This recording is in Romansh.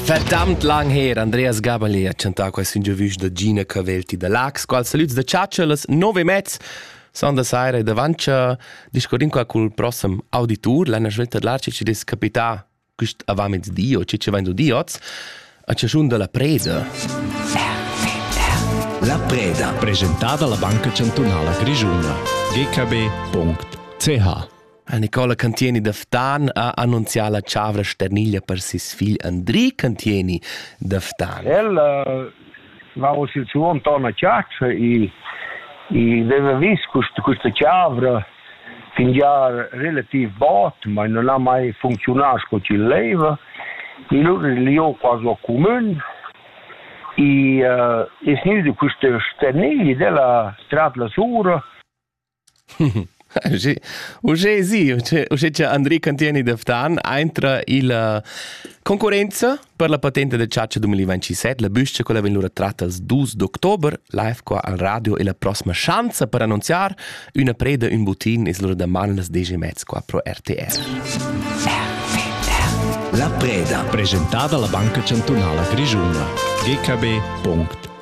Fertamt lang her Andreas Gabalet ha chantà questa intervista da Gina Cavelti da Lax, qual salüds da chatschalas, nove mezz son da saira e davantscha discorrin qua cul prossem auditur, l'anna svelta d'larci ci des capità quist avamezdi o ci ci vain di oz, a chaschun da la preda. La preda. Presentà da la Banca Chantunala Grischuna. gkb.ch La Nicola Cantieni da Ftan ha annunzià la chavra sterniglia per ses figl Andri Cantieni da Ftan. El va uss il suo intorno a Chiaccia e, e aveva vis questa chavra fingià relativ bot, ma non ha mai funzionato come ci leva. E allora io quasi ho comune e uh, es gnüda quista sterniglia della Stradla Sura Uschè sì, uschè cha Andri Cantieni da Ftan aintra illa concurrenza per la patente da chatscha 2027, la büscha quella vegn lura tratta als dus d'october live qua al radio e la prossima schanza per annunziar üna preda ün butin es lura daman las 10 e mezz qua pro RTR. La preda, presentada alla Banca Chantunala Grischuna. gkb.it